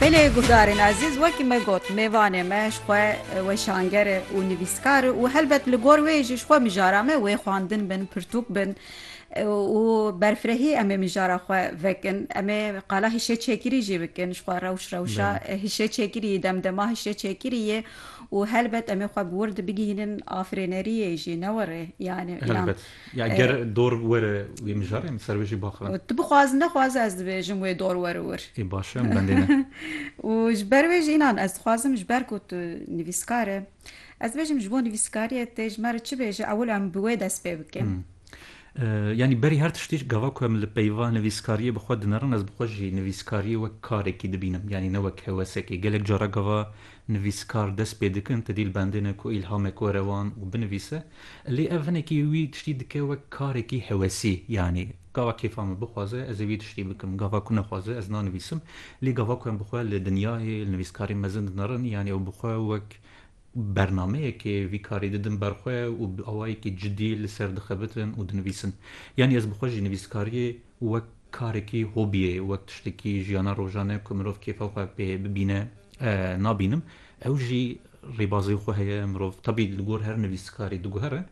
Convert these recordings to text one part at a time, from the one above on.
Belê guhdarên ezîz wekî me got mêvanê me ji xwe weşanger e û nivîskar e û helbet li gor wê jî ji xwe mijara me wê xwendin bin, pirtûk bin û berfirehî em ê mijara xwe vekin. Em ê qala hişê çêkirî jî bikin ji xwe rewş rewşa hişê çêkirî demdema hişê çêkirî yê û helbet em ê xwe bi wir de bigihînin afirêneriyê jî ne were yanî. Ya ger dor were wê mijarê min ser wê jî baxivin. Û tu bixwaz nexwaz ez dibêjim wê dor were wir. Ê baş e, em bendê ne. Û ji ber wê jî înan ez dixwazim ji ber ku tu nivîskar î ez dibêjim ji bo nivîskariyê tê ji me re çi bêje ewil em bi wê dest pê bikin. Yanî berî her tiştî gava ku em li peyva nivîskariyê bi xwe dinerin ez bi xwe jî nivîskariyê wek karekî dibînim yanî ne wek hewesekê. Gelek cara gava nivîskar dest pê dikin ti dîlbendine ku îlhamek were wan û binivîse lê ev hinekî wî tiştî dike wek karekî hewesî yanî gava kêfa min bixwaze ez ê wî tiştî bikim gava ku nexwaze ez nanivîsim lê gava ku em bi xwe li dinyayê li nivîskarî mezin dinerin yanî ew bi xwe wek bernameyekê vî karî didin ber xwe û bi awayekî cidî li ser dixebitin û dinivîsin yanî ez bi xwe jî nivîskariyê wek karekî hobiyê, wek tiştekî jiyana rojane ku mirov kêfa xwe pê bibîne nabînim. Ew jî rêbazên xwe heye, mirov tebî li gor her nivîskarî diguhere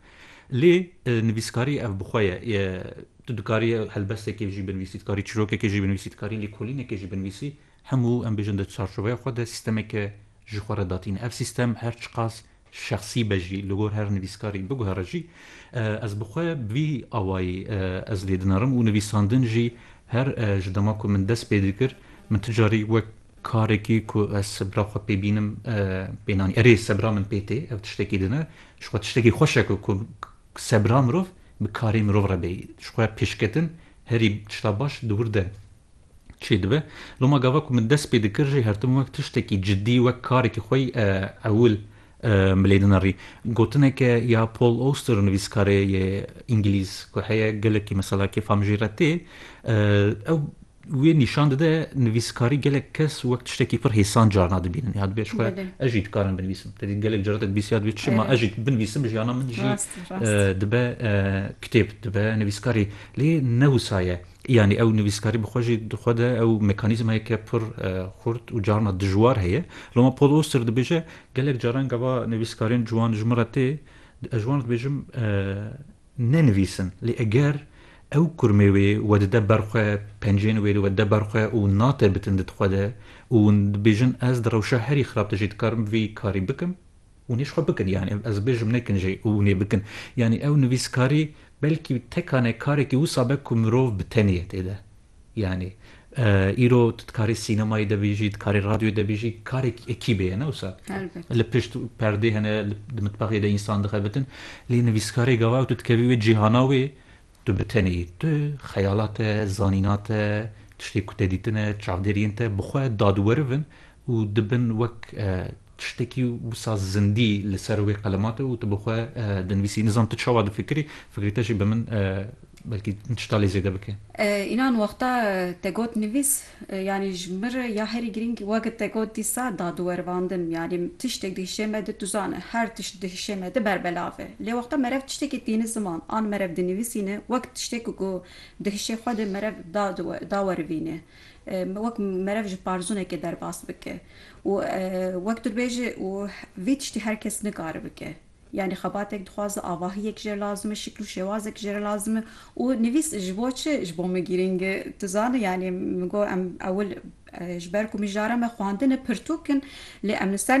lê nivîskarî ev bi xwe ye. Tu dikarî helbestekê jî binivîsî, dikarî çîrokekê jî binivîsî, dikarî lêkolînekê jî binivîsî. Hemû, em bêjin di çarçoveya xwe de sîstemeke ji xwe re datîne. Ev sîstem her çiqas şexsî be jî, li gor her nivîskarî biguhere jî, ez bi xwe bi vî awayî ez lê dinarim û nivîsandin jî her ji dema ku min dest pê dikir, min ti carî wek karekî ku ez sebira xwe pê bînim pê nanî. Erê, sebira min pê tê, ev tiştekî din e. Ji xwe tiştekî xweş e ku sebira mirov bi karê mirov re bê. Ji xwe pêşketin herî tişta baş di wir de çê dibe. Loma gava ku min dest pê dikir jî her tim wek tiştekî cidî, wek karekî xwe ewil milêdina rî. Gotineke ya Paul Auster nivîskarê yê îngilîz ku heye gelekî mesela kêfam jî re tê, ew wê nîşan dide nivîskarî gelek kes wek tiştekî pir hêsan carna dibînin ya dibê ji xwe ez jî dikarim binivîsim. Te dît gelek caran te dibîs ya dibê tu çima ez jî binivîsim jiyana min jî dibe kitêb dibe nivîskarî. Lê ne wisa ye. Yanî ew nivîskarî bi xwe jî di xwe de ew mekanîzmayeke pir xurt û carna dijwar heye. Loma Paul Auster dibêje, Gelek caran gava nivîskarên ciwan ji min re tê, ez ji wan re dibêjim nenivîsin. Lê eger ew kurmê wê wedide ber xwe, pencên wê wedide ber xwe û natebitin di xwe de û hûn dibêjin ez di rewşa herî xirab de jî dikarim vî karî bikim, Hûn ê ji xwe bikin yanî ev ez bêjim nekin jî û hûn ê bikin. Yanî ew nivîskarî belkî tekane karekî wisa be ku mirov bi teniyetê de yanî îro tu dikarî sînemayê de bêjî, dikarî radyoyê de bêjî karekî ekîbê ye ne wisa li pişt perdê hene di mitbexê de însan dixebitin lê nivîskarê gava tu dikevî wê cîhana wê Tu bi tenê yî. Tu xeyala te, zanîna te, tiştê ku te dîtine, çavdêriyên te bi xwe dadwerv in û dibin wek tiştekî wisa zindî li ser wê qelema te û tu bi xwe dinivîsî. Nizam tu çawa difikirî, fikrê te jî bi min belkî tişta lê zêde bike. Înan wexta te got nivîs. Yanî ji min re ya herî girîng weke te got dîsa da di werivandin. Yanî tiştek di hişê me di tu zane her tişt di hişê me di berbelav e. Lê wexta merev tiştekî tîni ziman an merev dinivîsîne wek tiştek ku di hişê xwe de merev da da werivîne. Wek merev ji parzûnekê derbas bike û wek tu dibêje û vî tiştî her kes nikare bike. Yanî xebatek dixwaze avahiyek jê re lazim e, şikl û şêwazek jê re lazim e û nivîs ji bo çi ji bo min girîng e? Tu zane yanî min got em ewil ji ber ku mijara me xwendin e pirtûk in lê em li ser